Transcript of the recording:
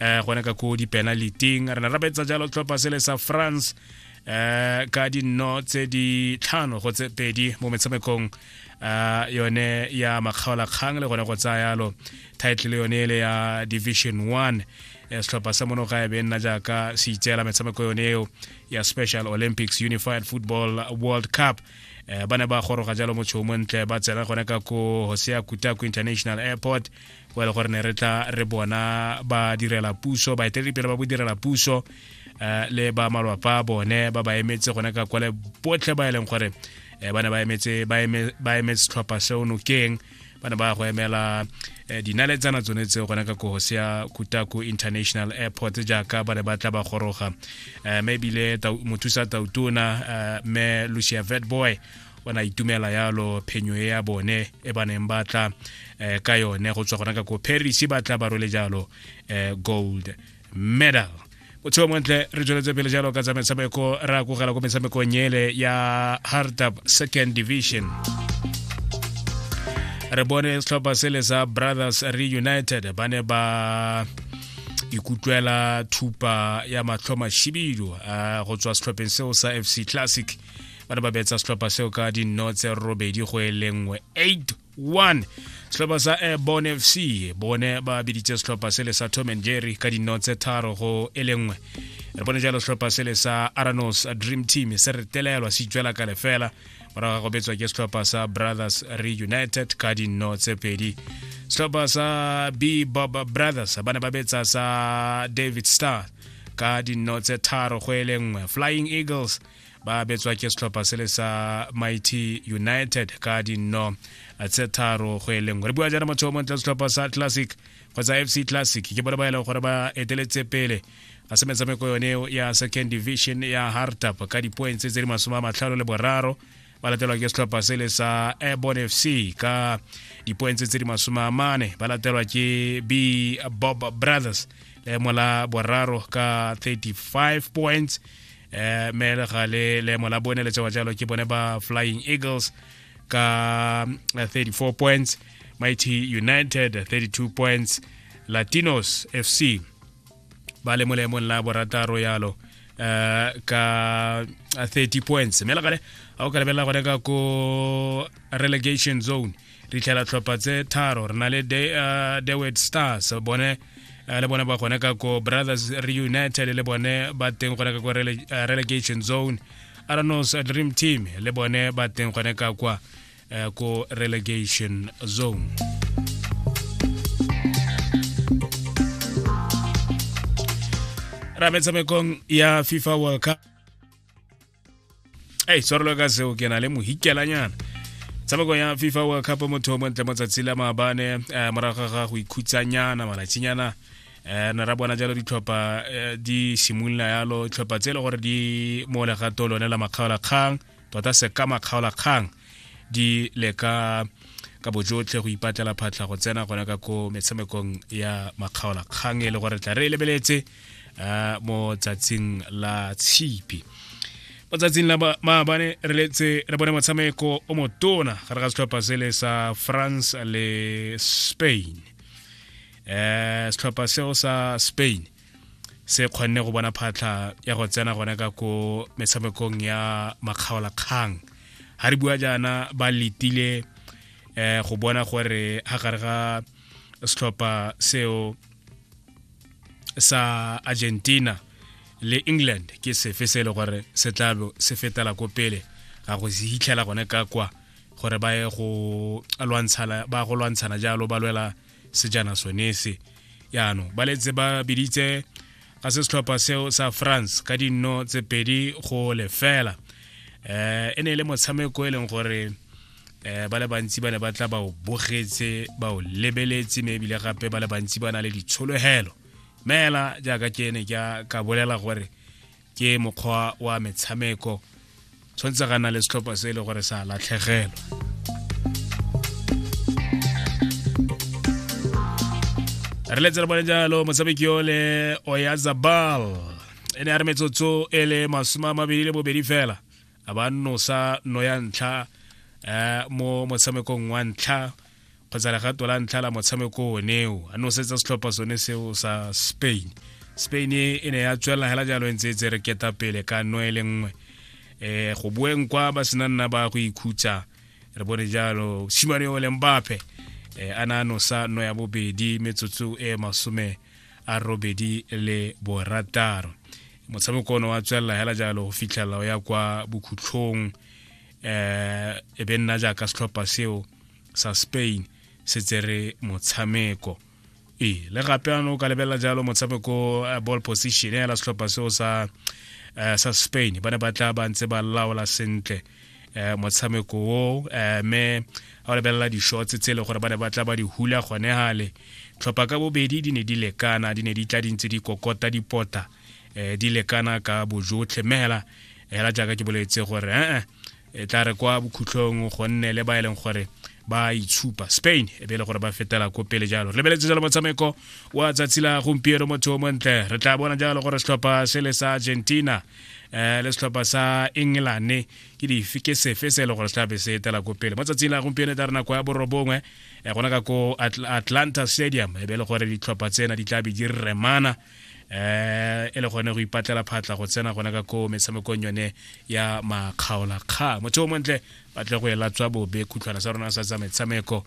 um gone ka ko dipenaliteng re ne ra betsa jalo tlhopha se le sa france um ka dinno tse di tlhano go tse pedi mo metshamekong um yone ya makgaolakgang le gone go tsaya yalo title yone ele ya division one setlhopha sa mono ga e be nna jaaka se itseela metshameko yone eo ya special olympics unified football world cup um ba ne ba goroga jalo motšho o montle ba tsena gone ka ko hosea kutaku international airport o e le gore ne re tla re bona ba direla puso baeteledipele ba bodirela puso eh, le ba malwapa a bone ba ba emetse gone ka kwale botlhe ba e leng gore eh, ba ne ba emetse ba emetse setlhopha seo nokeng ba ne ba go emela eh, dinaletsana tsone tseo gone ka kogosi ya kutako international airport jaaka ba ne ba tla ba goroga mme ebile mothusa tautona mme lucia vetboy ba na itumela yalo phenyo e ya bone e ba neng ba tla um ka yone go tswa gona ka ko paris ba tla ba role jalo um gold medal botsheo montle re tsweletse pele jalo ka tsa metshameko re akogela ko metshamekong ele ya hardab second division re bone setlhopha sele sa brothers reunited ba ne ba ikutlwela thupa ya matlho mashibidu go tswa setlhopheng seo sa fc classic ba ne ba betsa setlhopha seo ka dinno tse robedi go e le nngwe 81 setlhopha sa eh, bon fc bone ba biditse setlhopha se le sa tom and jerry ka dinno tse tharo go e le nngwe re bone jalo setlhopha se le sa aranos dream team se re telelwa se itswela ka lefela morago ga go betswa ke setlhopha sa brothers reunited ka dinno tse pedi setlhopha sa b bob brothers ba ne ba betsa sa david star ka dinno tse tharo go e le nngwe flying eagles ba betswa ke setlhopha se le sa mighty united ka dinno tse tharo go e lengwe re bua jaana motho o montle setlhopha sa classic kgotsa fc classic ke bone ba e leng gore ba eteletse pele a se metshameko yone ya second division ya hartap ka di-points tse di masome a matlhano le boraro ba latelwa ke setlhopha sele sa airborn f c ka dipoentse tse di masome a mane ba latelwa ke b bob brothers leemo la boraro ka 35 points eh me le ga le leemo la bone le tsewa jalo ke bone ba flying eagles ka 34 eh, points mighty united 32 points latinos fc ba le molemong la borataro yalo uh, ka 30 uh, points mme legale ga o ka lebelela gone ka ko relegation zone re itlhela tlhopha tse tharo re na le uh, dewet stars bone Eh, le bone ba gone ka ko brothers reunited le bone ba teng gone ka ko eh, relegation zone aranos dream team le bone ba teng gone ka kwa eh, ko relegation zone ra metshamekong ya fifa world cup ei tshwarelo ka seo ke na le mohikelanyana tshameko ya fifa world cup motho o montle mo tsatsi la maabane um eh, morago ga go ikhutsanyana malatsinyana um ne ra bona jalo ditlhopha eh, di simolola yalo tlhopha tse e le gore di mo legato lone la makgaolakgang tota se ka makgaolakgang di leka ka bojotlhe go ipatlela phatlha go tsena gona ka ko metshamekong ya makgaolakgang e le gore tla re e lebeletse uh, mo tsatsing la tshipi mo tsatsing la maabane re letse re bone motshameko o motona gare ga setlhopha se le sa france le spain um setlhopha seo sa spain se kgonne go bona phatlha ya go tsena gone ka ko metshamekong ya makgaolakgang ga re bua jaana ba letile um go bona gore ga gare ga setlhopha seo sa argentina le england ke sefe se e le gore se tlabo se fetela ko pele ga go se hitlhela gone ka kwa gore ba ye go lwantshana ba go lwantshana jalo ba lwela sejana sone se yaanong ba letse ba biditse ga se setlhopha seo sa france ka dinno tse pedi go lefela um e ne e le motshameko e leng gore um ba le bantsi ba ne ba tla ba o bogetse ba o lebeletse mme ebile gape ba le bantsi ba na le ditshologelo meela jaaka ke ne ka bolela gore ke mokgwa wa metshameko tshwanetse ga na le setlhopha se e le gore sa latlhegelwa re letse re bone jalo motshameki yo le oyazabal e ne a re metsotso e le masome a mabedi le bobedi fela a ba nosa no ya ntlha eh, mo motshamekong wa ntlha kgotsa legato la ntlha la motshameko oneo a nosetsa setlhopha sone seo sa spain spain e, e ne ya tswelela hela jalo e ntse e tse re keta pele ka no e le nngwe um go boeng kwa ba sena nna ba go ikhutsa re bone jalo simane o leng bape eh, a na nosa no ya bobedi metsotso e masome a robedi le borataro motshameko one wa tswelela hela jalo go fitlhelela o ya kwa bokhutlhong eh e be nna jaaka setlhopha seo sa spain se tsere motshameko ee le gape ano o ka lebelela jalo motshameko eh, ball position ya la setlhopha seo sa eh, sa spain ba ne ba tla ba ntse ba laola sentle eh motshameko o eh me a lebelela di-shots tse e le gore ba ne ba tla ba di hula gone gale tlhopha ka bobedi di ne di lekana di ne di tla dintse di kokota dipota eh di lekana ka bojotlhe mme hela hela jaaka ke boletse gore eh e tla re kwa bokhutlhong gonne le ba e leng gore ba itshupa spain e be e le gore ba fetela ko pele jalo re lebeletse jalo motshameko wa tsatsi la gompieno motho o montle re tla bona jalo gore setlhopha se le sa argentina um le setlhopha sa engelane ke dife ke sefe se e le gore se tlabe se etela ko pele mo tsatsing la gompieno e tla re nako ya borobongwe um gona ka ko atlanta stadium e be e le gore ditlhopha tsena di tlabe di remana eh e le gone go ipatlela phatla go tsena gona ka ko metshamekong yone ya makgaolakgang motho o montle batle go ela tswa bobe khutlhwana sa rona sa tsa metshameko